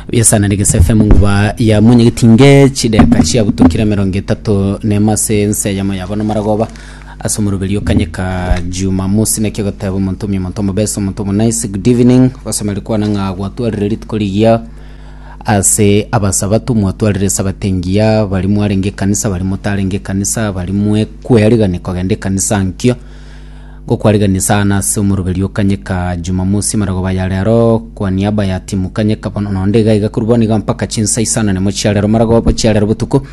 Biasana ni Gese FM nguba ya mwenyegiti nge chideka chia butokira mirongo etato nema ase ense yamo yabo na maragoba ase omoroberi okanyeka jumamosi naki ogoteba omonto omi omonto omobesa omonto omo nice good evening gosomeri kwana ng'a gwatwarire rituko rigiya ase abasabatu mwatwarire esabato engiya bari mwarenge ekanisa bari motarenge ekanisa bari mwekweriga ni kogenda ekanisa nkio Ngokwarigan'ia sana ase omoroberi o Kanyeka Jumamosi amaragoba aya rero kwa niaba ya timu Kanyeka bono nonde iga iga korwa bono iga mpaka chinsa isano nemo chia rero maragoba chia rero botuko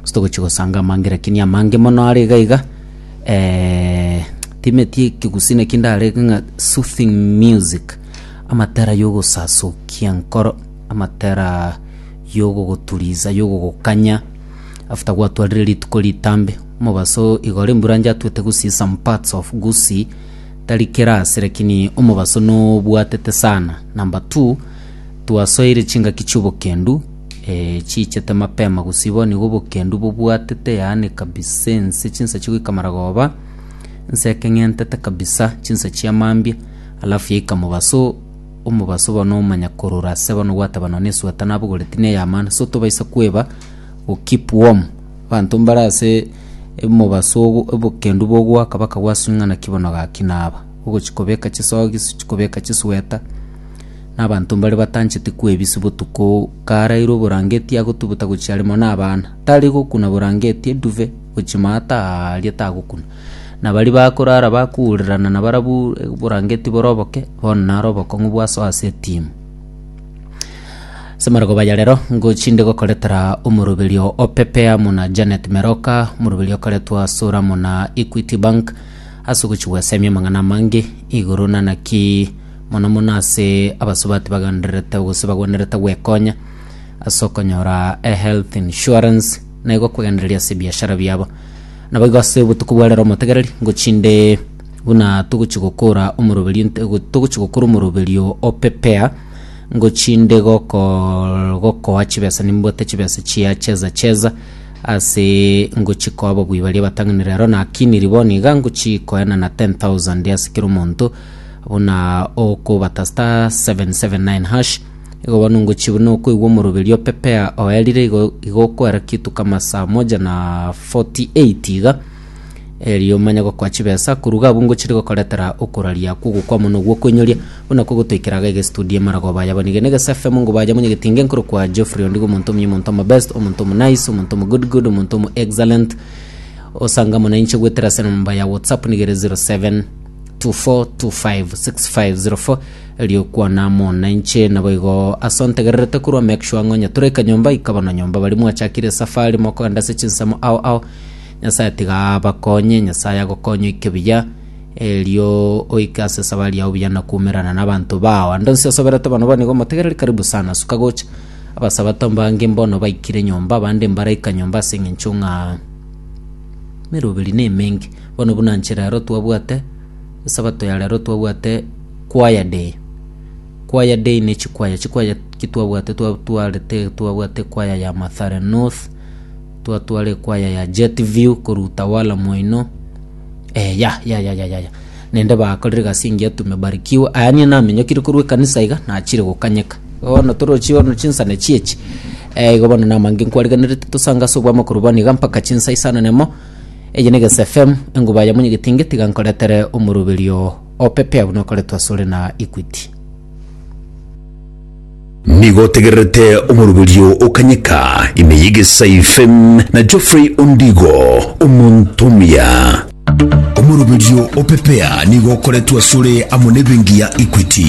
ase togochia gosanga amange lakini amange mono are iga iga eh, timeti ekigusi naki ndarege ng'a soothing music amatera yogosasokia enkoro amatera yogogoturiza yogogokanya After gwatwarire rituko ritambe, omobaso igoro emburancha atwete Gusii some parts of Gusii tari class lakini omobaso nobwatete sana number two twasoeire chingaki chiobokendu eh, chiichete mapema Gusii bono igo obokendu bobwatete yaani kabisa ense chinsachi goika Maragoba ense ekeng'entete kabisa chinsa chia mambia alafu yaika mobaso omobaso obo nomanya korora ase bono gwateba nonya esweta nabogoreti ne ya maana so tobaisa kweba go keep warm abanto mbare ase omobaso ogo obokendu bogoaka baka gwaswi ng'a naki bono gaki naba ogochi kobeka chisogi gochi kobeka chisweta na abanto mbare batancheti kwebisi botuko karaire oborangeti agotuguta gochia are mono na abana tari gokuna borangeti eduve gochi maata aria tagokuna. Na baria bakorara bakuurerana nabarabwo oborangeti bore oboke, bono naro obokong'u bwa soa ase etimu. Semargo Bayarero ngochinde gokoretera omoroberio o Pepe amo na Janet Meroka, omoroberio okoretwa Sura amo na Equity Bank ase ogochi gwesemia amang'ana amange igoro na naki mono mono ase abasubati bagendererete gose bagwenerete gwekonya ase okonyora ehealth insurance na igo kwegendereria ase ebiashara biabo. Naboigo ase obotuko bwa rero motegereri, ngochia inde buna togochia gokora omoroberio nte- go- togochia gokora omoroberio o pepea, ngochia inde goko- gokoa chibesa nimbwate chibesa chia cheza cheza ase ngochia koa ababui baria abatang'ani rero nakiniri bono iga ngochia koenana ten thousand ase kera omonto buna okobata star seven seven nine hash. Igo bono ngochia buna okoigwa omoroberi o Pepea oerire igo igo okoera kituko ama saa moja na 48 iga, erio manye gokoa chibesa. Koruga abwo ngochire gokoretera okoraria akwo ogokwa mono gwa okoinyoria, buna kogotoikera iga egestudio emaragoba aya abaniga na egesa FM ngo baye manye getinge nkorokwa Geoffrey Ondigo omonto omuya omonto omo best, omonto omo nice, omonto omo good good, omonto omo excellent. Osanga mono inche goetera ase enamba ya WhatsApp niga ere 0724256504. Eriokwana amo nainche naboigo ase ontegererete korwa make sure ng'o onye toraika nyomba ika bono nyomba bari mwachakire safari mokogenda ase chinsemo ao ao nyasaye tiga abakonye nyasaye agokonye oike buya erio oike ase esabari yao buya na kumerana na abanto bao ande onsi asoberete bono bono igo motegereri karibu sana suka gocha abasabato mbange mbono baikire nyomba abande mbaraika nyomba ase eng'encho ng'a meroberi nemenge bono buna inche rero twabwate Esabato ya rero twabwate choir day. Choir day ne chikwaya chikwaya ki twabwate twatwarete twabwate choir ya Mathare North twatware choir ya Jet View korwa Utawala Moino eh ya ya ya ya ya ya. nende bakorire egasi engiya tumebarikiwa aya niye namenyokire korwa ekanisa iga nachire gokanyeka bono torochi bono chinsane chiechi eh igo bono namange nkwarigenerete tosanga ase obwamo korwa bono iga mpaka chinsa isano nemo Eye negesefemu enguba ya monyegetinge tiga nkoretere omoroberio opepea buna okoretwe asore na Equity. Nigo otegererete omoroberio okanyeka ime y'egesaifen na Geoffrey Ondigo, omonto omuya. Omoroberio opepea nigo okoretwe asore amo nebenki ya Equity.